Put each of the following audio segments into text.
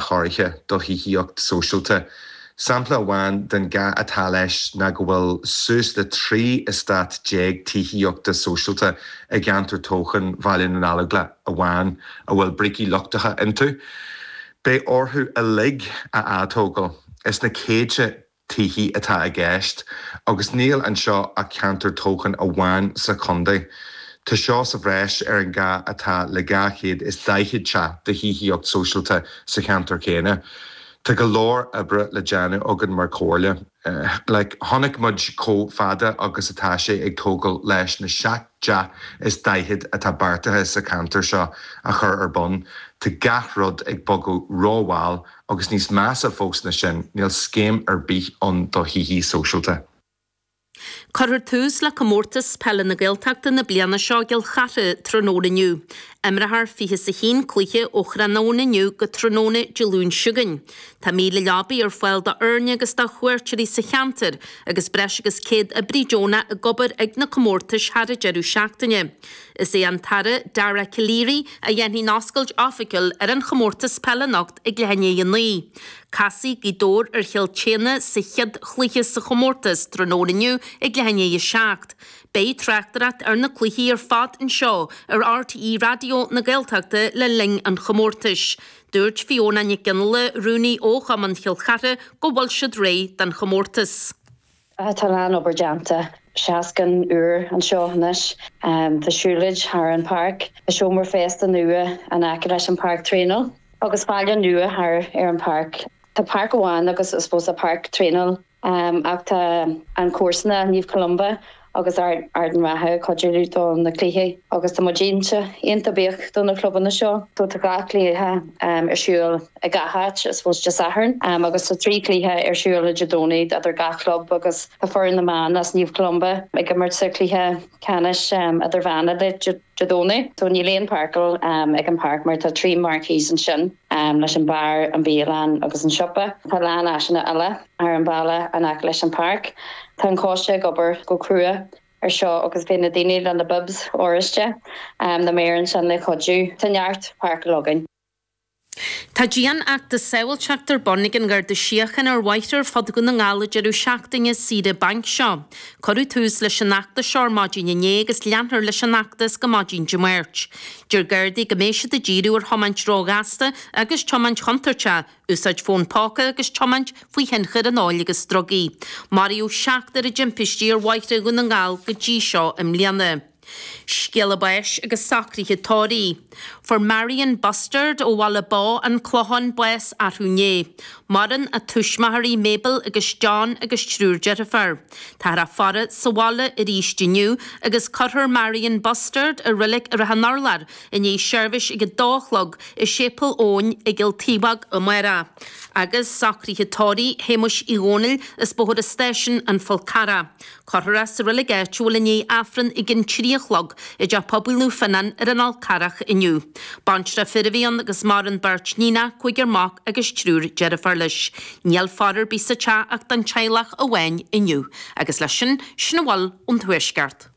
cairte do thithíocht sóisialta. Sampla amháin den gá atá leis ná go bhfuil suas le 13 eastát tithíochta sóisialta i gceantar toghcháin Bhaile na nGallóglá amháin a bhfuil brící lochtacha iontu. Beidh orthu uilig a atógáil. Is iad na céadta tithe atá i gceist agus níl anseo ach ceantar toghcháin amháin sa chontae. Tá seo sa bhreis ar an gá atá le 240 teach de thithíocht sóisialta sa cheantar chéanna. Tá go leor oibre le déanamh againn mar chomhairle. Like, tháinig muid chomh fada agus atá sé ag tógail leis na 7 dteach is 40 atá beartaithe sa cheantar seo a chur ar bun, tá gach rud ag bogadh ró-mhall, Agus níos measa fós na sin, níl scéim ar bith ann do thithí sóisialta. Cuirfear tús le Comórtas Peile na Gaeltachta na bliana seo i gCill Chartha tráthnóna inniu. Imreofar fiche is a haon cluiche ó thráthnóna inniu go tráthnóna Dé Luain seo chugainn. Tá míle leabaí ar fáil do fhoirne agus do chuairteoirí sa cheantar agus breis agus céad oibrí deonach ag obair ag na comórtais thar an deireadh seachtaine. Is é an tAire Dara Calleary a dhéanfaidh an oscailt oifigiúil ar an chomórtas peile anocht ag ceathrú tar éis a 9. Casfaidh Gaoth Dobhair ar Chill tSéadhna sa chéad chluiche sa chomórtas tráthnóna inniu ag ceathrú tar éis a 7. Beidh tráchtaireacht ar na cluichí ar fad anseo ar RTÉ Raidió na Gaeltachta le linn an chomórtais. Dúirt Fiona Nic Fhionnghaile, Rúnaí ó Chumann Chill Chartha go bhfuil siad réidh don chomórtas. Tá a lán obair déanta, seastán úr anseo anois, tá siúlóid thar an páirc, tá seomra feistis nua in aice leis an páirc traenáil agus fál nua thar ar an páirc. Tá páirc amháin agus I suppose páirc traenáil ach tá an comharsain, Naomh Columba agus Ard an Rátha ag cuidiú do na cluichí agus tá muid iontach buíoch do na clubanna seo so tá gach cluiche ar siúl. i gach áit, I suppose Dé Sathairn agus tá trí chluiche ar siúl ar Dé Domhnaigh idir gach club agus tá foireann na mban as Naomh Columba ag imirt sa chluiche ceannais idirmheánach Dé Domhnaigh so níl aon pharcáil ag an páirc mar tá trí marquees ansin leis an bar, an bialann agus an siopa. Tá a lán áiseanna eile ar an bhaile in aice leis an páirc. Tá an coiste ag obair go crua ar seo agus beidh na daoine le na bibs oráiste, na maoir ansin le cuidiú. Tá neart páirceáil againn. Tá dianfheachtas sábhailteachta ar bun ag an Gharda Síochána ar bhóithre ar fud Dhún na nGall an deireadh seachtaine saoire bainc seo. Cuireadh tús leis an fheachtas seo ar maidin inné agus leanfar leis an fheachtas go maidin Dé Máirt. Deir Gardaí go mbeidh siad ag díriú ar thiomáint róghasta agus tiomáint chontúirteach, úsáid fón póca agus tiomáint faoi thionchar an óil agus drugaí. Maraíodh seachtar i dtimpistí ar bhóithre Dhún na nGall go dtí seo i mbliana. Scéala báis agus socruithe tórraimh. Fuair Marion Bustard ó Bhaile Bó, An Clochán, bás arú inné. Maireann a tuismitheoirí, Mabel agus John agus triúr deirfiúr. Táthar á faire sa bhaile arís inniu agus cuirfear Marion Bustard i Reilig Shrath an Urláir i ndiaidh seirbhís ag a dó a chlog i Séipéal Eoin i gCill Taobhóg amárach. Agus socruithe tórraimh Shéamuis Uí Dhomhnaill as Bóthar an Stáisiúin, An Fál Carrach. Cuirfear é sa reilig áitiúil i ndiaidh Aifreann ag an trí a chlog i dTeach Pobail Naomh Fionán ar an Fhál Carrach inniu. Baintreach fir a bhí ann agus maireann beirt níonach, cúigear mac agus triúr deirfiúr leis. Níl faire ar bith sa teach ach don teaghlach amháin inniu. Agus leis sin, sin a bhfuil ón tuaisceart.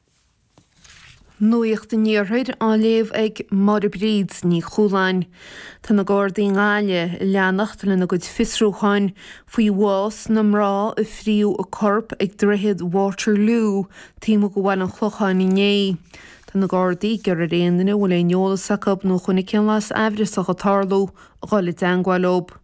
Nuacht an Iarthair á léamh ag Máire Bríd Ní Chualáin. Tá na Gardaí i nGaillimh ag leanacht lena gcuid fiosrúcháin faoi bhás na mná a fríothadh a corp ag droichead Waterloo taobh amuigh de Bhaile an Chlocháin inné. Tá na Gardaí ag iarraidh ar aon duine a bhfuil aon eolas acu nó a chonaic aon bhlas aimhreasach ag tarlú a dhul i dteangmháil leo.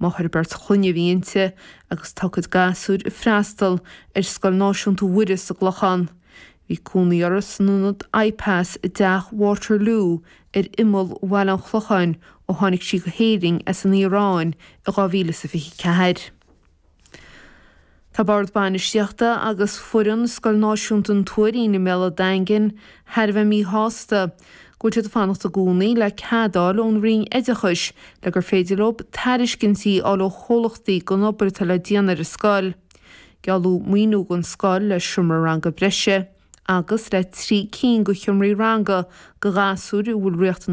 Máthair beirt chlainne a bhí inti agus tá a cuid gasúir ag freastal ar Scoil Náisiúnta Mhuire sa gClochán. Bhí cónaí orthu san ionad IPAS i dTeach Waterloo ar imeall Bhaile an Chlocháin ó tháinig sí go hÉirinn as an Iaráin in 2024. Tá Bord Bainistíochta agus foireann Scoil Náisiúnta an Tuairín i mBéal an Daingin thar a bheith míshásta go bhfuil siad ag fanacht i gcónaí le cead a fháil ón Roinn Oideachais le gur féidir leo tairiscintí a fháil ó chomhlachtaí don obair atá le déanamh ar an scoil. Gealladh maoiniú don scoil le seomra ranga breise agus le trí cinn de sheomraí ranga do ghasúir a bhfuil riachtanais